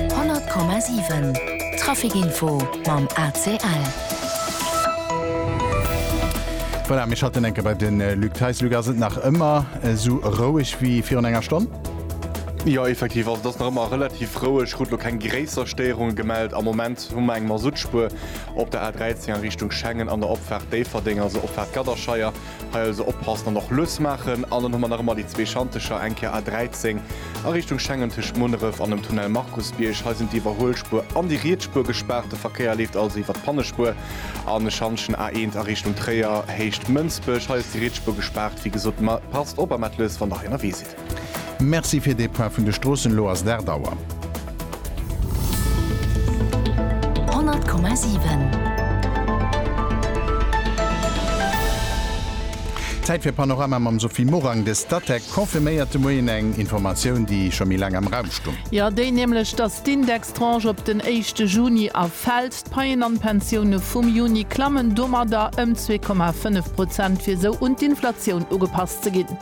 100,7 Trafic Info mam ACL. Voilà, mir schalten enke bei den äh, Luc Theis. Luc, ass et nach ëmmer äh, so roueg wéi virun enger Stonn? Ja effektiv also das nach immer relativ roueg Rutlo kein gréisser Steierungen gemeldet am Moment hu eng Masutspuer op der A13 an Richtung Schengen an der Opfahrt Déifferdeng also Opfahrt Gadderscheier Hei also oppassen an och lues maachen. An dann hu mer nach ëmmer déi zwee Schantecher, eng Kéier A13 a Richtung Schengen tëscht Munneref an dem Tunnel Markusbierg. Hei sinn d'Iwwerhuelspuer an déi riets Spuer gespaart. De Verkéier leeft also iwwert d'Pannespuer an de Schantjen A1 a Richtung Tréier, Héicht Mënsbech. Hei ass déi riets Spuer gespaart. Wéi gesot, passt op a maacht lues, wann der hei ënnerwee sidd. Merci fir dee Point vun de Stroossen. Elo ass et 8 Auer. 100,7. Zäit fir Panorama mam Sophie Morang. De Statec confirméiert de Moien eng Informatioun, déi scho méi laang am Raum stung. Jo, déi nämlech, datt d'Indextranche op den éischte Juni erfält. D'Paien an d'Pensioune vum Juni klammen domadder ëm zwee Komma fënnef Prozent, fir esou un d'Inflatioun ugepasst ze ginn.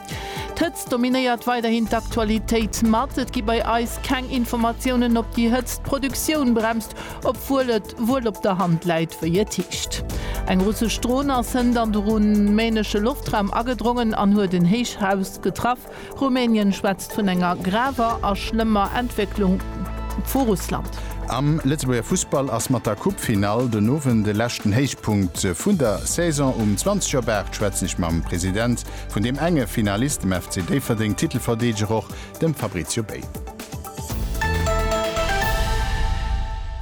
D'Hëtzt dominéiert weiderhin d'Aktualitéit mat. Et gi bei eis keng Informatiounen, ob déi Hëtzt d'Produktioun bremst, obwuel et wuel op der Hand läit, wéi et heescht. Eng russesch Dron ass hënt an de rumänesche Loftraum agedrongen an huet en Héichhaus getraff. Rumänien schwätzt vun enger graver a schlëmmer Entwécklung vu Russland. Am Lëtzebuerger Fussball ass mat der Coupe-Finall den Owend e leschten Héichpunkt vun der Saison. Um 20 op 8 schwätzen ech mam President Vun deem enge Finalist, dem FC Déifferdeng, Titelverdeedeger och, dem Fabrizio Bei.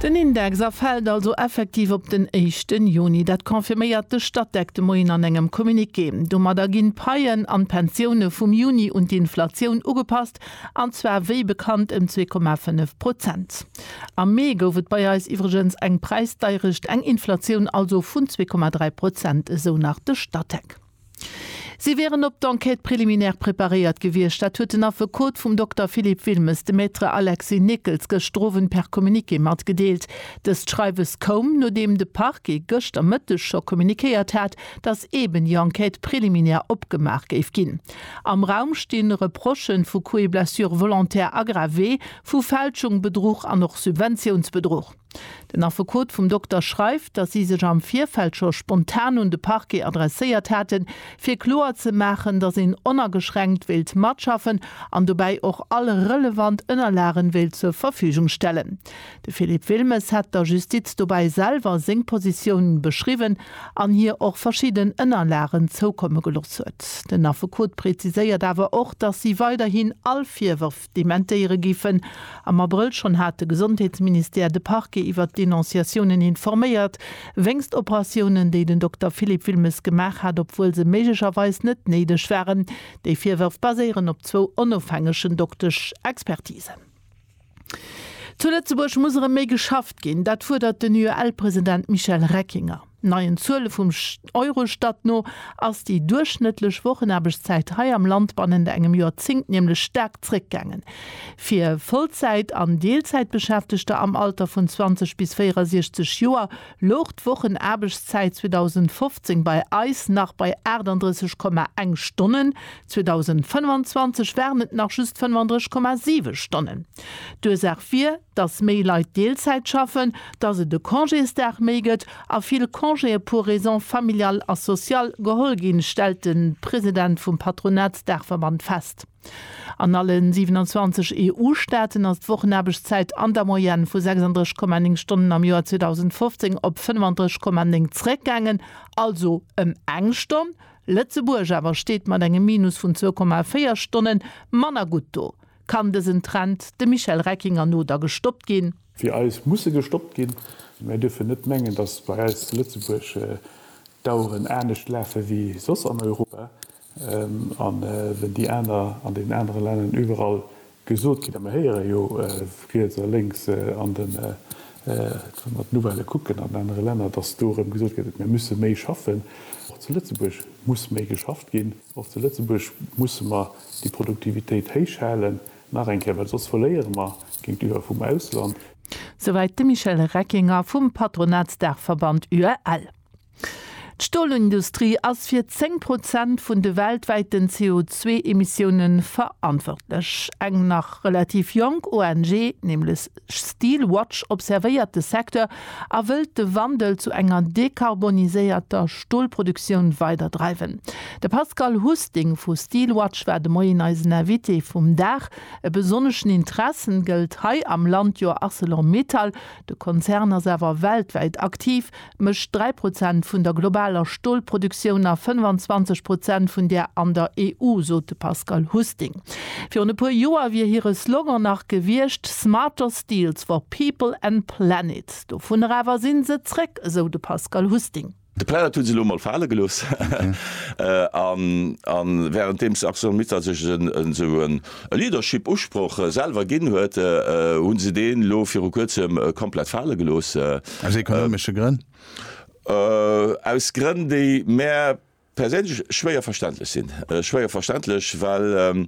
Den Index erfält also effektiv op den éischten Juni. Dat confirméiert de Statec de Moien an engem Communiqué. Domadder ginn d'Paien an d'Pensioune vum Juni un d'Inflatioun ugepasst, an zwar wéi bekannt ëm zwee Komma fënnef Prozent. Am Mee gouf et bei eis iwwregens eng Präisdeirecht, eng Inflatioun also vun zwee Komma dräi Prozent, esou nach de Statec. Si wieren op d'Enquête préliminaire preparéiert gewiescht. Dat huet den Affekot vum Dokter Philippe Wilmes de Me Alexis Nickels gëschter Owend per Communiqué matgedeelt. Dëst Schreiwes koum, nodeem de Parquet gëschter Mëtteg scho kommuniquéiert hat, datt eben déi Enquête préliminaire opgemaach géif ginn. Am Raum sti Reprochen vu Coups et blessures volontaires aggravés, vu Fälschung, Bedruch an och Subventiounsbedruch. Den Affekot vum Dokter schreift, datt si sech am Virfeld scho spontan un de Parquet adresséiert haten, fir kloer ze maachen, datt een onageschränkt wéilt matschaffen an dobäi och all relevant Ënnerlagen wéilt zur Verfügung stellen. De Philippe Wilmes hätt der Justiz dobäi selwer seng Positioun beschriwwen an hir och verschidden Ënnerlagen zoukomme gelooss huet. Den Affekot preziséiert awer och, datt si weiderhin all Virwërf, dementéiere giffen. Am Abrëll schonn hat de Gesondheetsministère de Parquet iwwert d'Denonciatiounen informéiert, wéinst Operatiounen, déi den Dokter Philippe Wilmes gemaach hat, obwuel se méiglecherweis net néideg waren. Déi Virwërf baséieren op zwou onofhängegen Doktesch Expertisen. Zu Lëtzebuerg muss erëm méi geschafft ginn, dat fuerdert den UEL-President Michel Reckinger. Neien Zuele vum Eurostat no ass déi duerchschnëttlech Wochenaarbechtszäit hei am Land bannent engem Joerzéngt nämlech staark zréckgaangen. Fir Vollzäit an Deelzäitbeschäftegter am Alter vun 20 bis 64 Joer louch d'Wochenaarbechtszäit 2015 bei eis nach bei 38,1 Stonnen, 2025 waren et nach just 35,7 Stonnen. D'Ursaach wier, dass méi Leit Deelzäit schaffen, dass et e Congésdag méi gëtt a vill Congéë pour raisons familiales a sociales geholl ginn, stellt de President vum Patronatsdaachverband fest. An alle 27 EU-Staaten ass d'Wochenaarbechtszäit an der Moyenne vu 36,9 Stonnen am Joer 2015 op 35,9 zeréckgaangen, also ëm eng Stonn. Lëtzebuerg awer steet mat engem Minus vun 2,4 Stonne manner gutt do. Kann dësen Trend, dem Michel Reckinger no, da gestoppt ginn? Fir eis muss e gestoppt ginn. Mir dierfen net mengen, datt bei eis zu Lëtzebuerg d'Aueren anescht lafe wéi soss an Europa. An wenn déi aner an deenen anere Länner iwwerall gesot ginn, a mir héiere jo riets a lénks an den, wa mer d'Nouvellë kucken an anere Länner, datt do erëm gesot gëtt, mir musse méi schaffen. Och zu Lëtzebuerg muss méi geschafft ginn. Och zu Lëtzebuerg musse mer déi Produktivitéit héich halen, nach eng Kéier, well soss verléiere mer géintiwwer vum Ausland. Souwäit de Michel Reckinger vum Patronatsdaachverband UEL. D'Stolindustrie ass fir 10 Prozent vun de weltwäiten CO2-Emissioune verantwortlech. Eng nach relativ jonk ONG, nämlech Steel Watch observéiert de Secteur a wëllt de Wandel zu enger dekarboniséierter Stolproduktioun weider dreiwen. De Pascal Husting vu Steel Watch war de Moien eisen Invité vum Dag. E besonneschen Interessen gëllt hei am Land jo Arcelor Mittal, de Konzern ass awer weltwäit aktiv, mécht 3 Prozent vun der globaler Stolproduktioun a 25 Prozent vun där an der EU, sot de Pascal Husting. Virun e puer Joer wier hire Slogan nach gewiescht Smarter Steels for People and Planet. Dovunner awer si se zréck, esou de Pascal Husting. De Planet hu se elo mol fale gelooss a wärenddeem d'Arcelor Mittal sech esou en. e Leadership Usproch selwer ginn huet, hu se deen elo viru kuerzem komplett fale gelooss. Aus ekonomesche Grënn? Aus Grënn déi mär perséinlech schwéier verständlech sinn. Schwéier verständlech, well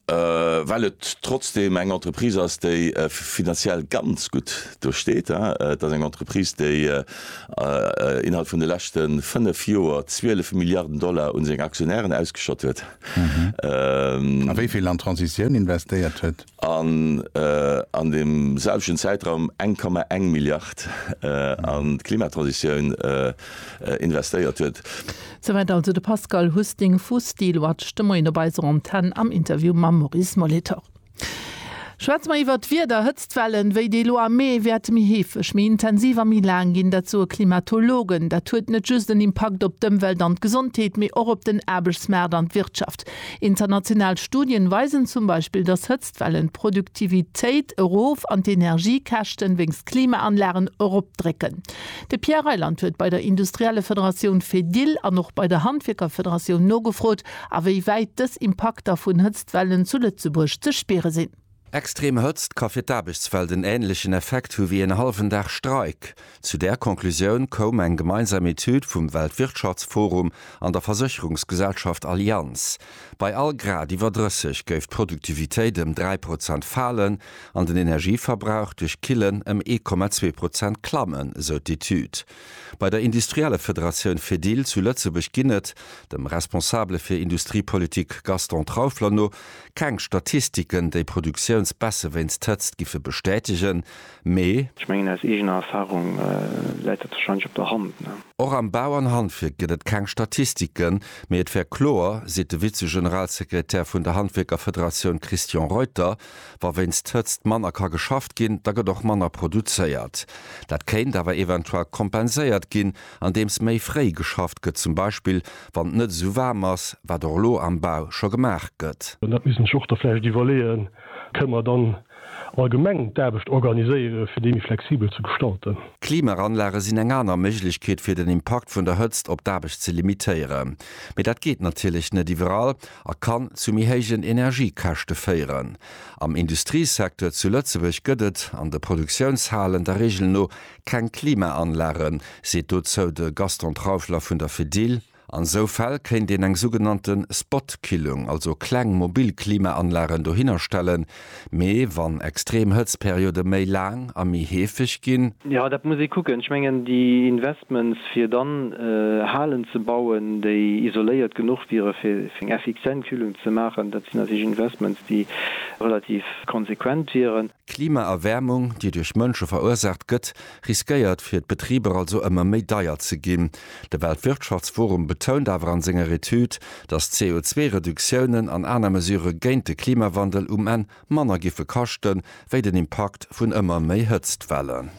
well et trotzdem eng Entreprise ass déi finanziell ganz gutt do steet. Et ass eng Entreprise déi innerhalb vun de leschte 5 Joer 12 Milliarden Dollar un seng Aktionären ausgeschott huet. A wéi vill an d'Transitioun investéiert huet? An an deem selwechten Zäitraum 1,1 Milliard an d'Klimatransitioun investéiert huet. Souwäit also de Pascal Husting vu Steelwatch de Moien op eiser Antenn am Interview mam Maurice Molitor. Schwätze mer iwwert d'Wieder, Hëtztwellen wéi déi elo am Mee wäerte méi heefeg, méi intensiv a méi laang ginn. Dat soe Klimatologen. Dat huet net just en Impakt op d'Ëmwelt an d'Gesondheet, mee och op den Aarbechtsmaart an d'Wirtschaft. International Studien weisen zum Beispill, dass Hëtztwellen d'Produktivitéit erof an d'Energiekäschten wéinst Klimaanlagen eropdrécken. De Pierre Reyland huet bei der Industriellefederatioun Fedil an och bei der Handwierkerfederatioun nogefrot, awéiwäit dës Impakter vun Wellen zu Lëtzebuerg ze spiere sinn. Extrem Hëtzt ka fir d'Aarbechtswelt en änlechen Effekt hu wéi en hallwen Dag Streik. Zu där Conclusioun koum eng gemeinsam Etüd vum Weltwirtschaftsforum an der Versécherungsgesellschaft Allianz. Bei all Grad iwwer 30 géif d'Produktivitéit ëm 3 Prozent falen an den Energieverbrauch duerch Killen ëm 1,2 Prozent klammen, esou d'Etüd. Bei der Industriellefederatioun Fedil zu Lëtzebuerg ginn et, dem Responsabele fir Industriepolitik Gaston Traufler no, keng Statistiken, déi Produktiounsbaisse wéinst Hëtzt giffe bestätegen, mee. Ech mengen, aus eegener Erfarung läit dat warscheinlech op der Hand. Och am Bau an Handwierk gëtt et keng Statistiken, mee et wär kloer, seet de Vize-Generalsekretär vun der Handwierkerfederatioun Christian Reuter. Wa wéinst Hëtzt manner ka geschafft ginn, da gëtt och manner produzéiert. Dat kéint awer eventuell kompenséiert ginn, andeems méi fréi geschafft gëtt, zum Beispill wann et net esou waarm ass, wat och elo am Bau scho gemaach gëtt. Dat misst een sech och da vläicht iwwerleeën, Kënne mer dann allgemeng d'Aarbecht organiséieren, fir déi méi flexibel ze gestalten? Klimaranlage sinn eng aner Méiglechkeet, fir den Impakt vun der Hëtzt op d'Aarbecht ze limitéieren. Mee dat geet natierlech net iwwerall, a kann zu méi héijen Energiekäschte féieren. Am Industriesecteur zu Lëtzebuerg gëtt et an de Produktiounshalen der Regel no keng Klimaanlagen, seet dozou de Gaston Trauschler vun der Fedil. An esou Fäll kéint een eng sougenannte Spot-Killung, also kleng mobil Klimaanlagen dohinner stellen, Mee wann extrem Hëtztperiode méi laang a méi heefeg ginn? Jo, dat muss ee kucken. Ech mengen, déi Investments, fir dann Halen ze bauen, déi isoléiert genuch wiere fir eng effizient Kühlung ze maachen, dat sinn natierlech Investments, déi relativ konsequent wieren. D'Klimaerwäermung, déi duerch Mënsche verursaacht gëtt, riskéiert fir d'Betriber also ëmmer méi deier ze ginn. De Weltwirtschaftsforum betount awer an senger Etüd, datt CO2-Reduktiounen an aner Mesurë géint de Klimawandel um Enn manner giffe kaschten, wéi den Impakt vun ëmmer méi Hëtztwellen.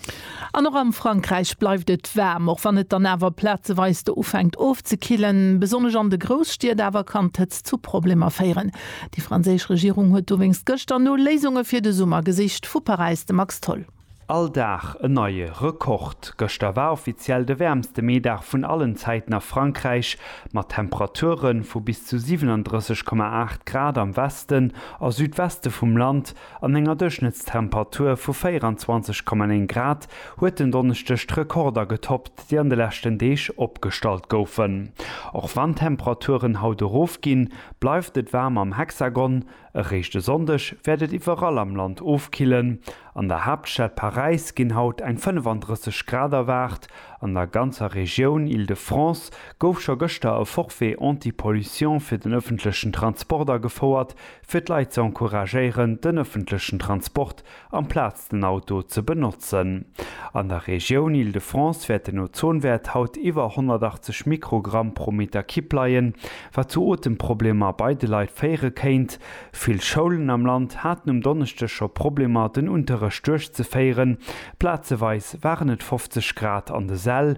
An och am Frankräich bleift et waarm, och wann et dann awer plazeweis do ufänkt ofzekillen. Besonnesch an de Grousstied awer kann d'Hëtzt zu Problemer féieren. Déi franséisch Regierung huet dowéinst gëschter no Léisunge fir de Summer gesicht. Vu Paräis de Max Tholl. All Dag en neie Rekord. Gëschter war offiziell de wäermste Meedag vun allen Zäiten a Frankräich, mat Temperature vu bis zu 37,8 Grad am Westen a Südweste vum Land an enger Duerchschnëttstemperatur vu 24,9 Grad huet den Donneschdeg d'Rekorder getoppt, déi an de leschten Deeg opgestallt goufen. Och wann d'Temperaturen haut erofginn, bleift et waarm am Hexagon, Eréischt e Sonndeg wäert et iwwerall am Land ofkillen. An der Haaptstad Paräis ginn haut eng 35 Grad erwaart. An der ganzer Regioun Île-de-France gouf scho gëschter e Forfait anti-pollution fir den ëffentlechen Transport agefouert, fir d'Leit ze encouragéieren, den ëffentlechen Transport amplaz den Auto ze benotzen. An der Regioun Île-de-France wäert den Ozonwäert haut iwwer 180 Mikrogramm pro Meter Kipp leien, wat zu Otemproblemer bei de Leit féiere kéint. Vill Schoulen am Land haten um Donneschdeg scho Problemer, den Unterrecht duerchzeféieren. Plazeweis waren et 50 Grad an de Säll.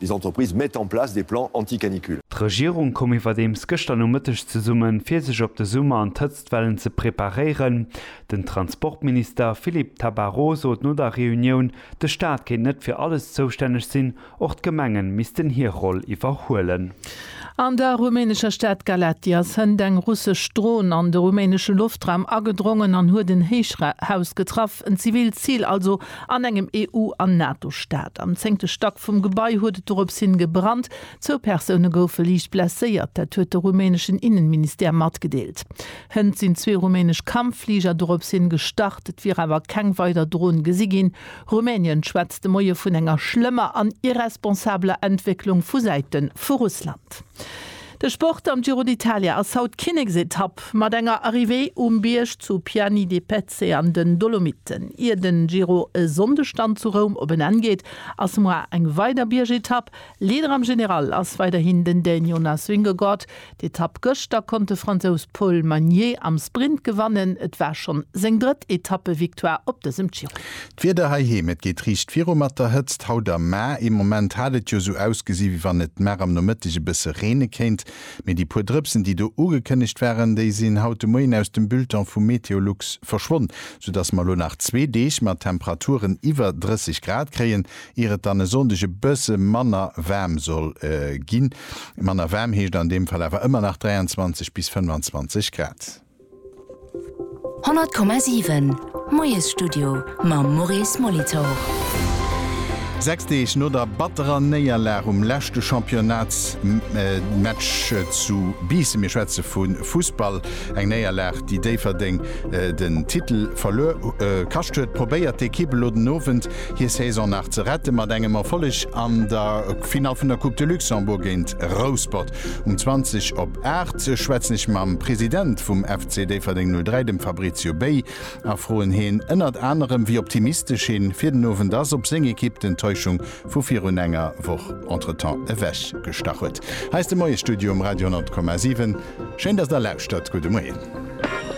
Les entreprises mettent en place des plans anti-canicule. D'Regierung koum iwwerdeems gëschter Nomëtteg zesummen, fir sech op de Summer an d'Hëtztwellen ze preparéieren. Den Transportminister Philippe Tabarot sot no der Reunioun, de Staat kéint net fir alles zoustänneg sinn, och d'Gemengen missten hir Roll iwwerhuelen. An der rumänescher Stad Galaţi ass hënt eng russesch Dron an de rumänesche Loftraum agedrongen an huet en Héichhaus getraff, en zivilt Zil also. An engem EU an NATO-Staat. Am zéngte Stack vum Gebai huet et dorops hin gebrannt. Zwou Persoune goufe liicht blesséiert, dat huet de rumäneschen Innenministère matgedeelt. Hënt sinn zwee rumänesch Kampffliger dorops hin gestart, et wier awer keng weider Dron gesi ginn. Rumänien schwätzt de Moie vun enger schlëmmer an irresponsabeler Entwécklung vu Säite vu Russland. De Sport am Giro d'Italia ass haut Kinneksetapp mat enger Arrivée um Bierg zu Piani de Pezzo. Abruzzen an den Dolomiten. Ier den Giro e Sonndeg dann zu Roum op en Enn geet, ass muar eng weider Biergetapp. Leader am General ass weiderhin den Dän Jonas Vingegaard. D'Etapp gëschter konnt de Fransous Paul Magnier am Sprint gewannen. Et war schonn seng drëtt Etappevictoire op dësem Giro. D'Wieder heiheem, Et geet riicht viru mat der Hëtzt haut am Maer. Ee Moment hat et jo esou ausgesi wéi wann et nach am Nomëtteg e bësse reene kéint. Mee déi puer Drëpsen, déi do ugekënnegt waren, déi sinn haut de Moien aus dem Bulletin vu Meteolux verschwonn, soudass mer elo nach zwee Deeg mat Temperaturen iwwer 30 Grad kréien, ier et dann e Sonndeg e bësse manner waarm soll ginn. Manner waarm heescht an deem Fall awer ëmmer nach 23 bis 25 Grad. 100,7, Moiesstudio mam Maurice Molitor. Sechs Deeg no der batterer Néierlag um leschte Championnats-Match zu Biissen, mir schwätze vu Fussball, eng Néierlag, déi Déifferdeng den Titel verluer kascht huet, probéiert d'Ekipp elo den Owend hir Saison nach ze rette mat engem Erfolleg an der Finall vun der Coupe de Luxembourg géint Rouspert. Um 20 op 8 schwätzen ech mam President vum FC Déifferdeng 03, dem Fabrizio Bey, a froen heen ënnert anerem, wéi optimistesch heen fir den Owend ass, ob seng Ekipp d'Enttäuschung vu virun enger Woch entretemps ewech gestach huet. Hei ass de Moie Studio um Radio 100,7. Schéin dass der lauschtert. Gudde Moien.